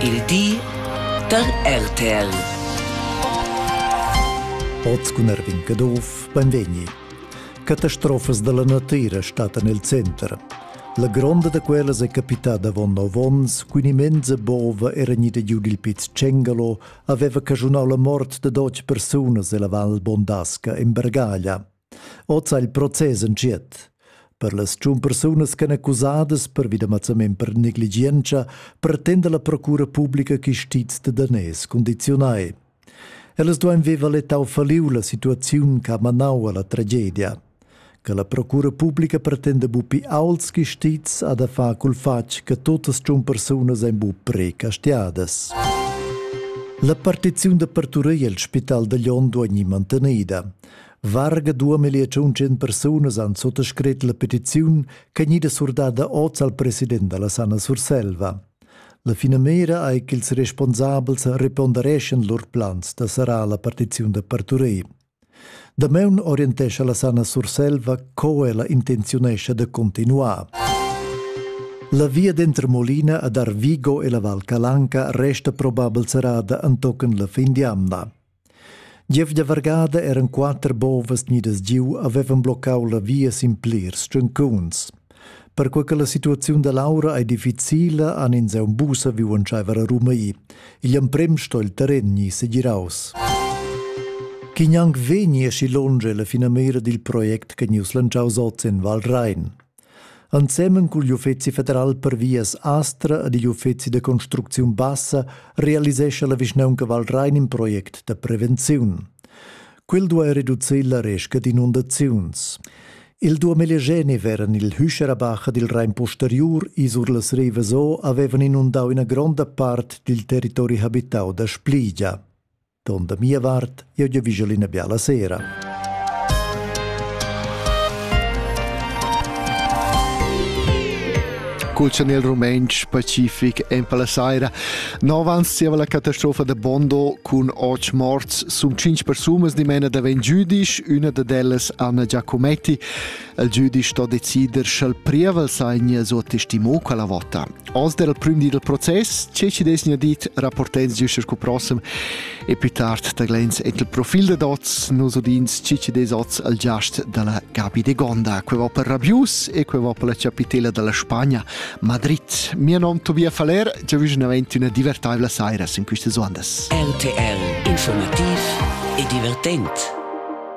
Il di da RTL. Oz cun Erwin Caduff beim Vegni. Catastrofas dalla natira stattan el center. La gronda da quellas è capitada avon nov onns cun immensa bova era gnida giu dil Piz Cengalo aveva caschunau la mort da dotg persunas ella Val Bondasca in Bergaglia. Oz ha il process entschiet. Per las tschun persunas ch'en accusadas pervi da mazzament per negligientscha pretenda la procura publica chistiz de danès condizionai. Ellas duein veva letau faliu la situaziun che ha manau alla tragedia. Che la procura publica pretenda bupi auls chistiz a da fa cul fatg che totas tschun persunas ein bu precastiadas. La partiziun d'apertura el spital da Lyon duei mantenida. Varga duamillia tschunchen persunas han suttascret la petiziun che gnida surdada oz al president dalla Sanna Surselva. La finamira ei ch'ils responsabels repondereschan lur plans da serrar la partiziun da parturei. Damaun orientescha la Sanna Surselva co ella intenziunescha de continuar. La via denter Molina ad Arvigo e la Val Calanca resta probabel serrada antochen la fin di amna. Gief da vargada eran quatter bovas gnidas giu havevan bloccau la via sin plirs tschuncuns. Perquei che la situaziun da Laura ei difficila han ins aunc buca viu entscheiver a rumei. Igl emprem sto il terren gni segiraus. Chi gnanc vegni aschi longe la finamira dil project che gnus lantschaus oz en Val Rein. Ensemen cugl uffeci federal per vias Astra ed igl uffeci da construcziun bassa realisescha la vischnaunca Val Rein in project da prevenziun. Quel duai reducir la resca d'inundaziuns. Il duamillegeni veran il Hüscherabach ed il Rein posteriur isur las rivas o avevan inundau ina gronda part dil territori habitau da Spligia. Don da mia vart, jeu giavischel ina biala sera. Col chanel rumantsch pacific en la saira. Novans zieva la catastrofa da Bondo cun otg morts sun cinc persunas dimena daven giudisch, üna dad ellas Anna Giacometti Il giudice sto decider sch'el prievel segna suo testimo quella vota. Oz der il prim di del process, che ci desnia dit rapportens giuster cu prossem e più tard da glens et il profil de dots nos udins ci ci des oz al giast della Gabi de Gonda, que va per Rabius e que va per la capitela della Spagna, Madrid. Mio nom Tobias Faller, già vicinamente una divertevole sera in queste ondas. RTL Informativ e divertente.